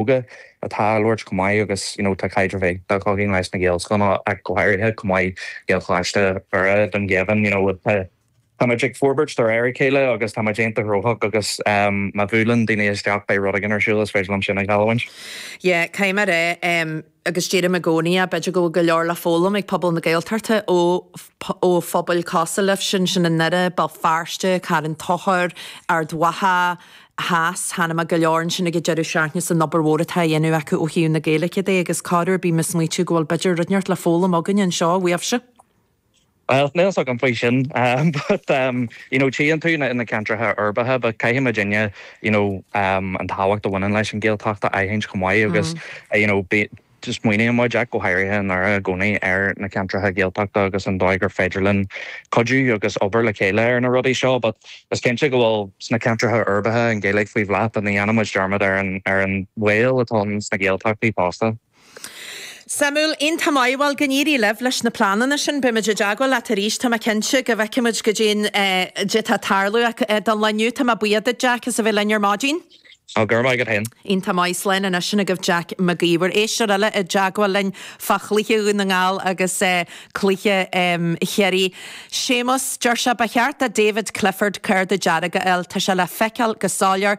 óga atá á labhairt chomh maith agus you know tá caidreamh éigin againn leis na Gaelscoileanna ach go háirithe chomh maith Gaelcholáiste Dhoire i nDún Geimhin you know tá muid ag forbairt de réir a chéile agus tá muid iontach gnóthach agus má bhuaileann daoine isteach beidh rud éigin ar siúl is féidir liom sin a ghealladh duit. Yeah, cinnte é. agus deirim i gcónaí é, b'fhéidir go bhfuil go leor le foghlaim ag pobal na Gaeltachta ó phobail cosúil libhse ansin i nDoire, Béal Feirste, Carn Tóchair, Ard Mhacha theas, chuala mé go leor ansin ag an deireadh seachtaine fán obair mhór atá á dhéanamh acu ó thaobh na Gaeilge de agus corruair bím ag smaoitiú go bhfuil b'fhéidir rud, neart le foghlaim againne anseo uaibhse. Bhuel, níl 'fhios agam faoi sin but ehm you know tchíonn tú na na ceantracha uirbeacha but caithfimidne you know ehm an tábhacht a bhaineann leis an Ghaeltacht a aithint chomh maith agus you know bí smaoinímid ach go háirithe i nDoire i gcónaí ar na ceantracha Gaeltachta agus an dóigh gur féidir linn cuidiú agus obair le chéile ar na rudaí seo but is cinnte go bhfuil sna ceantracha uirbeacha an Ghaeilge faoi bhláth but ní dhéanaimid dearmad ar an ar an bhaol atá ann sna Gaeltachtaí fosta. Suimiúil, iontach maith, bhuel go n-éirí libh leis na pleananna sin, beimid i dteagmháil leat arís, tá mé cinnte go bhfeicfimid goidé, goidé atá ag tarlú, ach don lá inniu. Tá mé buíoch duit, Jack, as a bheith linn ar maidin. Tá go raibh maith agat féin. Iontach maith, slán anois sin agaibh, Jack Mag Uidhir. Éisteoir eile i dteagmháil linn fá chluiche Dhún na nGall agus cluiche Chiarraí. Séamus, Deir sé, ba cheart do David Clifford cárta dearg a fháil, tá sé le feiceáil go soiléir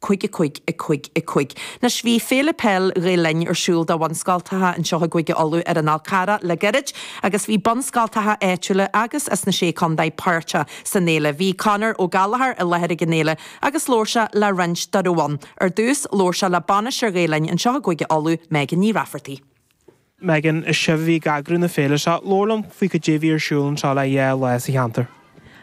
Cúig a cúig a cúig a cúig. Anois, bhí Féile Peil Ghael Linn ar siúl do bhunscoltacha anseo i gCúige Uladh ar an Fhál Carrach le gairid agus bhí bunscoltacha áitiúla agus as na Sé Contae páirteach san fhéile. Bhí Conor Ó Gallachóir i láthair ag an fhéile agus labhair sé le roinnt dá raibh ann. Ar dtús, labhair sé le bainisteoir Ghael Linn anseo i gCúige Uladh, Megan Ní Raifeartaigh. Megan, is sibh a bhí ag eagrú na féile seo. Labhair liom faoi cad é a bhí ar siúl anseo le dhá lá sa cheantar.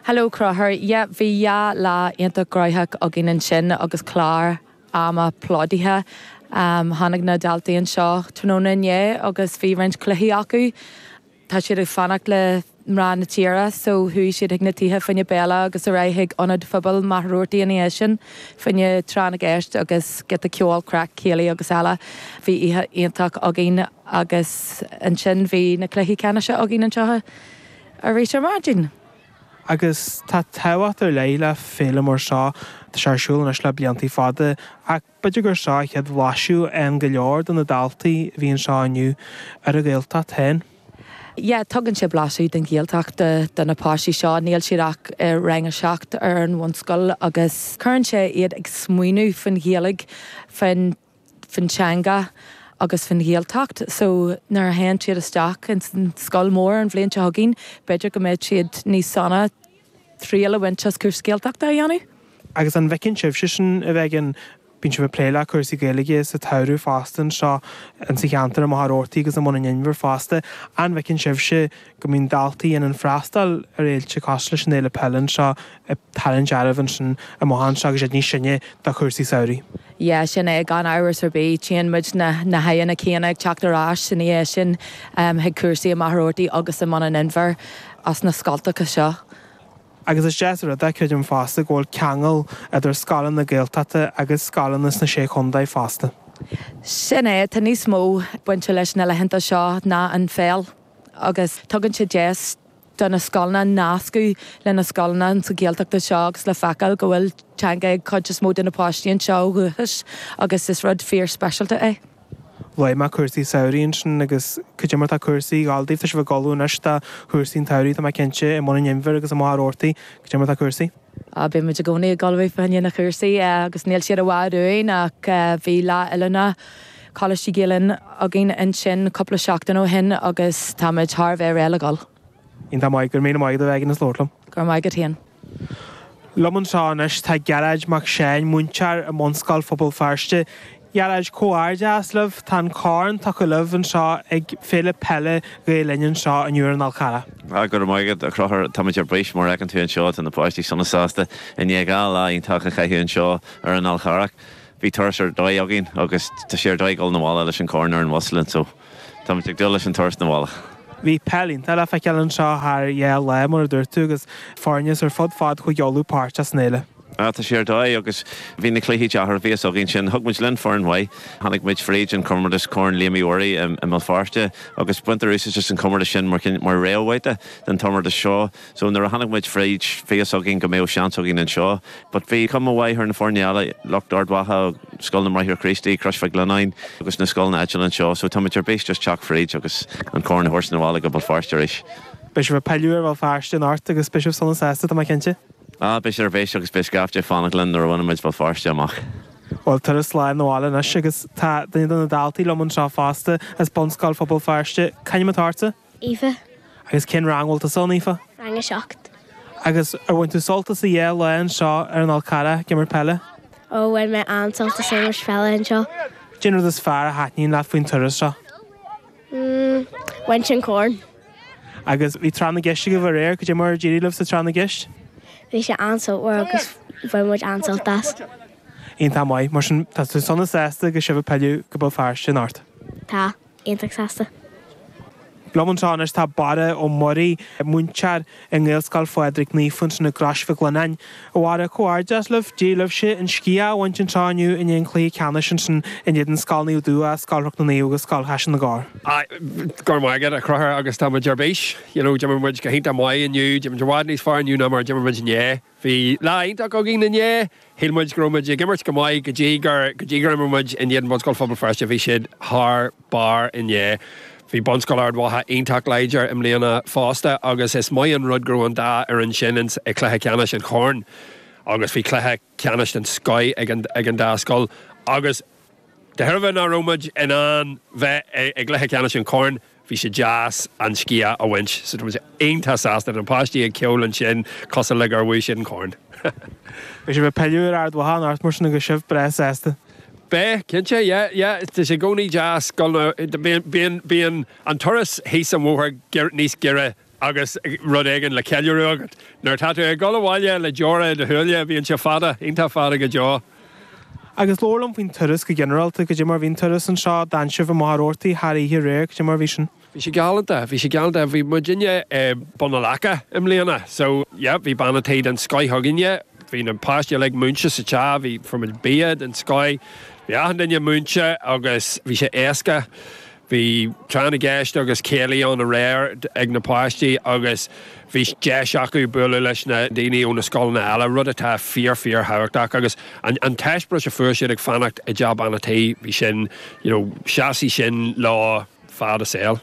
Hello Conchúr, Yeah, bhí dhá lá iontach gnoitheach againn ansin agus clár ama plódaithe. Tháinig na daltaí anseo tráthnóna inné agus bhí roinnt cluichí acu. Tá siad ag fanacht le mná na dtithe so chuaigh siad chuig na tithe fá choinne béile agus ar aghaidh chuig Ionad Pobail Mhachaire Rabhartaigh ina dhiaidh sin fá choinne tráth na gceist agus giota ceoil, craic, céilí agus eile. Bhí oíche iontach againn agus ansin bhí na cluichí ceannais againn anseo arís ar maidin. Agus tá tábhacht ar leith le féile mar seo atá sé ar siúl anois le blianta fada ach B'fhéidir gur seo an chéad bhlaiseadh ag go leor de na daltaí a bhí anseo inniu ar an Ghaeltacht féin. Yeah, tugann sé blaiseadh den Ghaeltacht do na páistí seo. Níl siad ach i rang a seacht ar an bhunscoil agus cuireann sé iad ag smaoineamh faoin Ghaeilge, faoin faoin teanga agus faoin Ghaeltacht. So, nuair a théann siad isteach ins an scoil mór an bhliain seo chugainn, b'fhéidir go mbeidh siad níos sona. triail a bhaint as cúrsa Gaeltachta a dhéanamh. Agus an bhfeiceann sibhse sin a bheith ag, bíonn sibh ag plé le cúrsaí Gaeilge sa tsamhradh fosta anseo in sa cheantar i Machaire Rabhartaigh agus i mBun an Inbhir fosta, an bhfeiceann sibhse go mbíonn daltaí in ann freastáil ar fhéilte cosúil leis an fhéile peile anseo ag tarraingt ar ais ansin amach anseo agus iad níos sine do chúrsaí samhraidh? Yeah, sin é, gan amhras ar bith. Tchíonn muid na na haghaidheanna céanna ag teacht ar ais ina dhiaidh sin chuig cúrsaí i Machaire Rabhartaigh agus i mBun an Inbhir. as na scoltacha seo. Agus is deas an rud é, creidim fosta, go bhfuil ceangal idir scoileanna Gaeltachta agus scoileanna sna Sé Chontae fosta. Sin é, tá níos mó bainte leis na laethanta seo ná an pheil agus tugann sé deis do na scoileanna nascadh le na scoileanna sa Ghaeltacht anseo agus le feiceáil go bhfuil teanga ag cuid is mó de na páistí anseo ó dhúchas agus is rud fíor speisialta é. Luaigh mé cúrsaí samhraidh ansin agus cad é mar tá cúrsaí ag gabháil daoibh, tá sibh ag ullmhú anois do chúrsaí an tsamhraidh, tá mé cinnte, i mBun an Inbhir agus i Machaire Rabhartaigh, cad é mar tá cúrsaí. Á, bíonn muid i gcónaí ag ullmhú fá dhéin na gcúrsaí agus níl siad i bhfad uainn ach bhí lá oiliúna Choláistí Ghael Linn againn ansin cúpla seachtain ó shin agus táimid thar a bheith réidh le gabháil. Iontach maith, go raibh míle maith agat a bheith againn, is labhairt liom. Go raibh maith agat féin. Liom anseo anois tá Gearóid Mac Seáin, múinteoir i mBunscoil Phobal Feirste. Gearóid, comhghairdeas libh, tá an corn tugtha libh anseo ag Féile Peile Ghael Linn anseo inniu ar an Fhál Charrach. Ah, go raibh maith agat, a Chonchúir, táimid ar bís mar fheiceann tú anseo, tá na páistí sona sásta i ndiaidh dhá lá iontach a chaitheamh anseo ar an Fhál Charrach. Bhí turas ar dóigh againn agus tá sé ar dóigh dhul 'na bhaile leis an corn ar an bhus linn so. Táimid ag dúil leis an turas 'na bhaile. Bhí peil iontach le feiceáil anseo thar dhá lá, mar a dúirt tú, agus foirne ar fud fad Chúige Uladh páirteach san fhéile. Ah, tá sé ar dóigh, agus bhí na cluichí deacair, bhí fhios againn sin. Thug muid linn foireann mhaith. Tháinig muid fríd an comórtas Corn Liam Uí Mhuirí i mBéal Feirste, agus baintear úsáid as an gcomórtas sin mar réamhbhabhta don chomórtas seo. So nuair a tháinig muid fríd, bhí fhios againn go mbeadh seans againn anseo but bhí cuma mhaith ar na foirne eile, lucht Ard Mhacha, Scoil na mBráithre Críostaí, Crois Mhic Lionnáin agus na scoileanna áitiúla anseo so tá muid ar bís just teacht fríd agus an corn a thabhairt 'na bhaile go Béal Feirste arís. Beidh sibh ag pilleadh ar Bhéal Feirste anocht agus beidh sibh sona sásta, tá mé cinnte? Ah, beidh siad ar bís agus beidh scaifte ag fanacht linn nuair a bhaineann muid Béal Feirste amach. Bhuel, turas slán 'na bhaile anois agus tá duine de na daltaí liom anseo fosta, as Bunscoil Phobal Feirste. C'ainm atá ortsa? Aoife. Agus cén rang a bhfuil tusa ann, Aoife? Rang a seacht. Agus ar bhain tú sult as do dhá lá anseo ar an Fhál Charrach ag imirt peile? Ó, bhain mé an-sult as imirt peile anseo. Cén rud is fearr a thaitníonn leat faoin turas seo? Mmm, bhaint an corn. Agus bhí Tráth na gCeist agaibh aréir, cad é mar a d'éirigh libh sa Tráth na gCeist? Bhí sé an-sultmhar agus bhain muid an-sult as. Iontach maith. Mar sin, tá tú sona sásta go bhfuil sibh ag pilleadh go Béal Feirste anocht? Tá. iontach sásta. Liom anseo anois tá Barra Ó Muirí, múinteoir i nGaelscoil Phádraig Naofa ins an Chrois Mhic Lionnáin. A Bharra, comhghairdeas libh! D'éirigh libhse an sciath a bhaint anseo inniu i ndiaidh an chluiche ceannais ins an in éadan Scoil Naomh Dubhthach, Scoil Chnoc na Naomh agus Scoil Chaiseal na gCorr. Go raibh maith agat, a Chonchúir, agus tá muid ar bís! You know, d'imir muid go hiontach maith inniu, d'imir muid i bhfad níos fearr inniu ná mar a d'imir muid inné. Bhí lá iontach againn inné. Shíl muid go raibh muid ag imirt go maith go dtí gur, go dtí gur imir muid in éadan Bunscoil Phobal Feirste. Bhí siad thar barr inné. Bhí Bunscoil Ard Mhacha iontach láidir i mbliana fosta agus is maith an rud go raibh an dá fhoireann sin in sa chluiche ceannais an Choirn agus bhí cluiche ceannais den scoith ag an, ag an dá scoil agus de thairbhe nach raibh muid in ann bheith i gcluiche ceannais an Choirn Bhí sé deas an sciath a bhaint so tá muid iontach sásta na páistí ag ceol ansin, cosúil le gur bhuaigh siad an corn. Beidh sibh ag pilleadh ar Ard Mhacha anocht mar sin agus sibh breá sásta? Beidh, cinnte. Yeah, yeah. Tá sé i gcónaí deas dul na, bíonn an turas thuas an bóthar níos giorra. Agus rud éigin le ceiliúradh agat. Nuair atá tú ag dul abhaile le deora i do shúile, bíonn sé fada, iontach fada go deo. Agus labhair liom faoin turas go ginearálta, goidé mar bhí an turas anseo, d'fhan sibh i Machaire Rabhartaigh thar oíche aréir, goidé mar bhí sin. Bhí sé galánta, bhí sé galánta. Bhí muidinne i mBun an Leaca i mbliana, so, yeah, bhí bean an tí den scoith againne, bhí na páistí uilig múinte sa teach, bhí, fuair muid bia den scoith, bhí achan duine múinte agus bhí sé éasca. Bhí tráth na gceist agus céilí ann aréir ag na páistí agus bhí deis acu bualadh leis na daoine ó na scoileanna eile, rud atá fíor, fíorthábhachtach agus an t-eispéireas a fuair siad ag fanacht i dteach Bhean a' Tí, bhí sin, you know, seasfaidh sin leo fad a saol.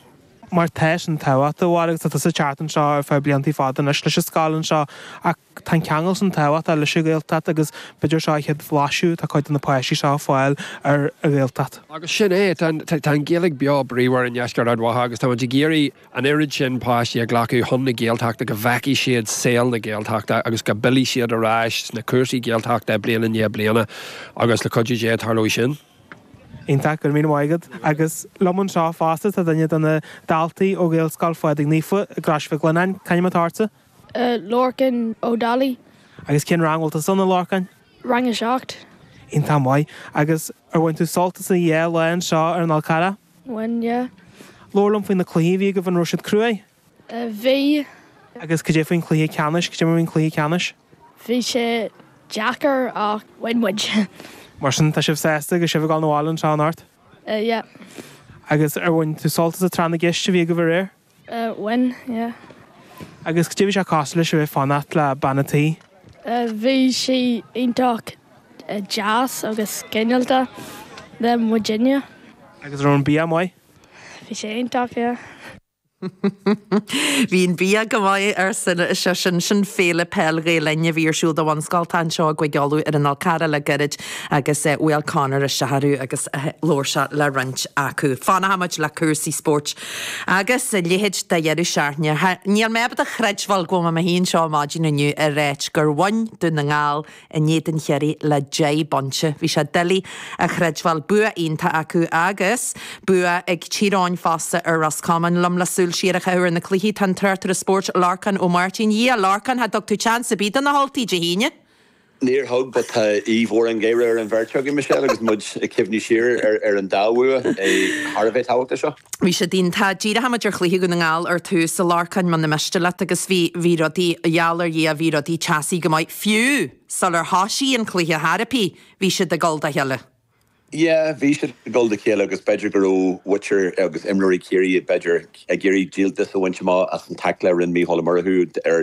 Mar tá sin tábhachtach, a Bharra, agus tá tusa ag teacht anseo ar feadh bliantaí fada anois leis an scoil anseo ach, Tá an ceangal sin tábhachtach leis an Ghaeltacht agus b'fhéidir seo an chéad bhlaiseadh atá cuid de na páistí seo a fháil ar an Ghaeltacht. Agus sin é, tá an Ghaeilge beo bríomhar i ndeisceart Ard Mhacha agus tá muid ag iarraidh an oiread sin páistí a ghlacadh chun na Gaeltachta go bhfeicfidh siad saol na Gaeltachta agus go bpillfidh siad ar ais ar na cúrsaí Gaeltachta bliain i ndiaidh bliana agus le cuidiú Dé tarlóidh sin. Iontach, go raibh míle maith agat. Agus liom anseo fosta tá duine de na daltaí ó Ghaelscoil Phádraig Naofa i gCrois Mhic Lionnáin. C'ainm atá ortsa? Lorcán Ó Dálaigh. Agus cén rang a bhfuil tusa ann, a Lorcáin? Rang a seacht. Iontach maith. Agus ar bhain tú sult as an dá lá anseo ar an Fhál Carrach? Bhain, yeah. Labhair liom faoi na cluichí a bhí agaibh, an raibh siad cruaidh? Bhí. Agus cad é faoin chluiche ceannais? Cad é mar a bhí an cluiche ceannais? Bhí sé deacair ach bhain muid. Mar sin, tá sibh sásta agus sibh ag dul na bhaile anseo anocht? Yeah. Agus ar bhain tú sult as an Tráth na gCeist a bhí agaibh aréir? Eh, when, yeah. Agus cad é a bhí sé cosúil leis a bheith fanacht le bean an tí? Eh, bhí sí iontach deas agus cineálta le muidinne. Agus raibh an bia maith? Bhí sé iontach, yeah. Bhí an bia go maith, arsa an oiseach sin. Sin Féile Peil Ghael-Linn a bhí ar siúl do bhunscoilte anseo i gCúige Uladh ar an Fhál Carrach le gairid agus bhuail Conor isteach orthu agus labhair sé le roinnt acu. Fanfaidh muid le cúrsaí spóirt Agus a leithéid de dheireadh seachtaine. Chan fhuil mé ábalta a chreidbheáil go bhfuil mé i mo shuí anseo ar maidin inniu ag ráit gur bhain Dún na nGall in éadan Chiarraí le deich bpointe. Bhí sé doiligh a chreidbheáil. Bua iontach acu agus bua ag Tír Eoghain fosta ar Ros Comáin. Liom le súil siar a chaitheamh ar na cluichí tá an tráchtaire spóirt Lorcán Ó Máirtín. Hiya, a Lorcáin, cha dtug tú chance ar bith do na hUltaigh Dé hAoine! Níor thug, but tá aoibh mhór an gháire ar an bheirt againn, Michelle, agus muid ag cuimhniú siar ar an dá bhua thar a bheith tábhachtach seo. Bhí siad iontach. Díreochaimid ar chluiche Dhún na nGall ar tús, a Lorcáin, muna miste leat, agus bhí bhí rudaí, gheall ar Dhia, bhí rudaí teasaí go maith, fiú sular thoisigh an cluiche chor ar bith, bhí siad ag dul dá chéile. Yeah, bhí siad ag dul dá chéile agus b'fhéidir go raibh muintir agus imreoirí Chiarraí b'fhéidir ag iarraidh díoltas a bhaint amach as an taicle a rinne Micheál Ó Murchú ar